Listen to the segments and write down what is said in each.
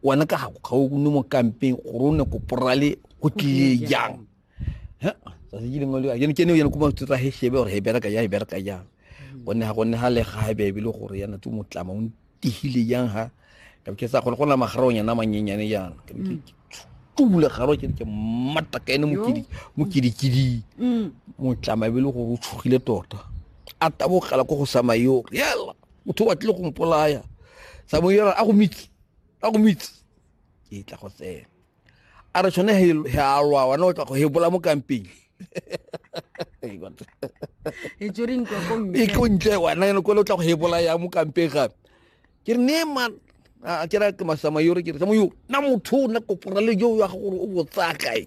wena ka gago ga o ne mo kampeng gore o ne ko porale go tlile jang tsatsi ke lengwe le ke ne yena ko matsotsa he shebe gore he bereka jang he bereka jang mm. gonne ga gonne ga le ga ebe ebile gore yana tse motlama o ntihile jang ha ka ke sa gore go na magarong yana manyenyane jana ka ke tula garo ke ke matta ka ene mokidi mokidi kidi mm. motlama ebile gore o tshogile tota a tabogela ko go samayo yela motho o batlile go mpolaya samoyela a go mitse ka go moitse ke tla go tsena a re tshone he a lwa wana o tla go hebola mo kampeng e tlo ntle wana ene kole o tla go hebola ya mo kampeng gape ke re ne man ke ra ke masama yore ke re samayo na motho o na kopora le jo ya gore o botsaya kae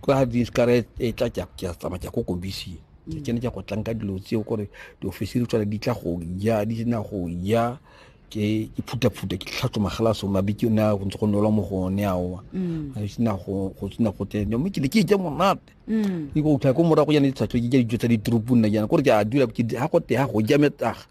kwa diskara e e tla ke a- ke a tsamaya ke ya ko kobising ke Mm. kene ke go tlanka dilo tseo gore diofisiri tsone di tla go ja di sena go ja ke ke phutaphuta ke tlhatso magalaso mabiki o ne a go ntse go nolwa mo go one aowa Mm. ga sena go go sena go tene mme ke ne ke ja monate Mm. ke go utlwa ko morago jana ditshatlho ke ja dijo tsa ditoropong nna jana kore ke a dula ke ha go te ha go ja metaga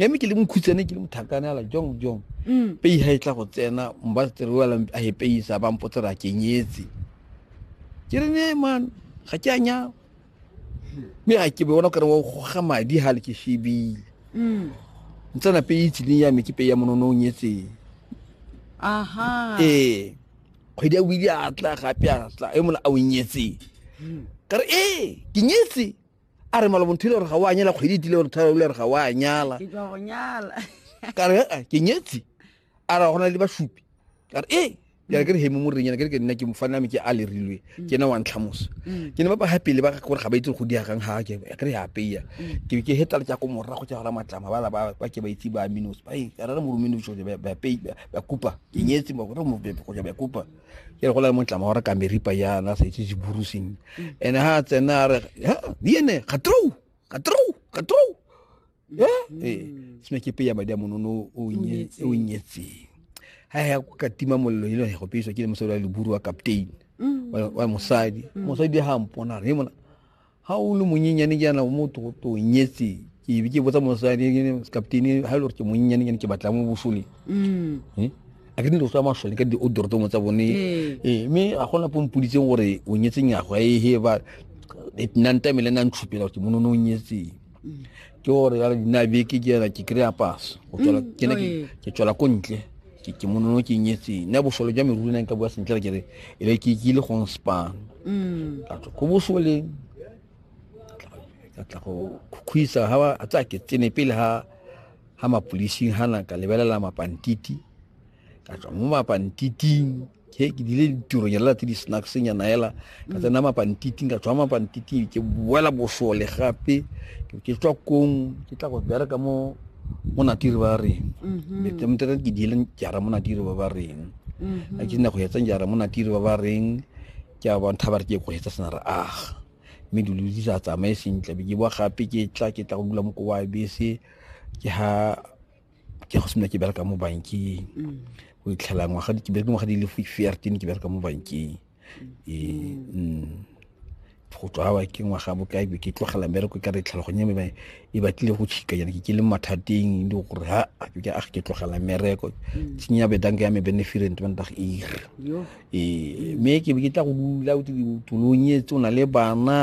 ya me ke le mokhutsane ke le mothakane ala jong jong mm. pei ha e tla go tsena mba tsere wa la a hepei sa ba mpotse ra kenyetse ke re ne man ga ke anya me ga ke bona kare wa go ga madi ha le ke shebile mm. ntsana pei tsileng ya me ke pei ya monono o nyetse aha eh kgwedi ya wili a tla gape a tla e mola a o nyetse mm. kare eh ke nyetse a re malobo ntho ile gore ga o a nyala kgwedi e tile gore tharo ile gore ga o a nyala ke tswa go nyala ka re "Ah, ke nyetse a ra gona le basupi ka re ee ke re ke re hemo mo renyana ke re ke nna ke mofana me ke a lerilwe ke ena wa ntlhamoso ke ne ba ba gapele ba gore ga ba itse go diagang ga ke ke re apeya ke ke hetala tsa ko morago tsa gora matlama ba la ba ba ke ba itse ba minos ba e ka re mo romino jo ba ba pei ba kupa ke nyetse mo gore mo bebe go ja ba kupa ke re go la motlama wa re ka meripa yana sa itse jiburu seng ene ha tsena re ha di ene ga trou ga trou ga trou ya eh sine ke pe ya madi a monono o nye o nyetse ha ya ka tima mollo ile go peiswa ke le mosadi wa leburu wa captain wa mosadi mosadi ha mpona re mona ha o le monyenyane ke yana o mo togoto nyetse ke be ke botsa mosadi captain ha e le gore ke monyenyane ke ne ke batla mo bosole Mm. Eh? a ke ne tlo tswa masole ka di-odortomo tsa bone Ee. ee mme a gona pompoditseng gore o nyetseng yago a ehe ba nang tamele nang tshupela gore ke monono o nyetseng ke gore ya dina beke ke ena ke kry-a paso mm, ke ne ke tswela ko ntle ke monono ke nyetseng ne bosole jwa meruri neng ka bua sentle ke re e be ke ile gong span mm. ka tlo ko bosoleng ka tla go khukhwisa ha ba tsa ke tsene pele ha ha mapolising ha na ka lebelela mapantiti ka tswa mo mapantiti ke ke dile ditiro nyala tse di snacks nyana hela ka mm. tsena mapantiting ka tswa mapantiting ke boela bosole gape ke tswa kong ke tla go bereka mo mo natiri ba reng metse mm-hmm. motera ke dile jara mo natiri ba ba reng mm-hmm. a ke nna go etsa jara mo natiri ba ba reng ke a bontsha ba re ke go etsa sena re aga mme dilo di sa tsamaye sentle be ke boa gape ke tla ke tla go dula mo ko wa bese ke ha ke go sena ke bereka mo bankeng mm. o itlhela ngwaga ke bereke ngwaga di le fifteen ke bereka mo bankeng ee go tswa ke ngwaga bokae be ke tlogela mmereko ka re tlhaloganye me e batlile go tšhika yana ke ke le mathateng le gore ha ke a ke tlogela mmereko tsenya bedanka ya me benefirent bandag ir ee mme ke be ke tla go dula o tolong e tse o na le bana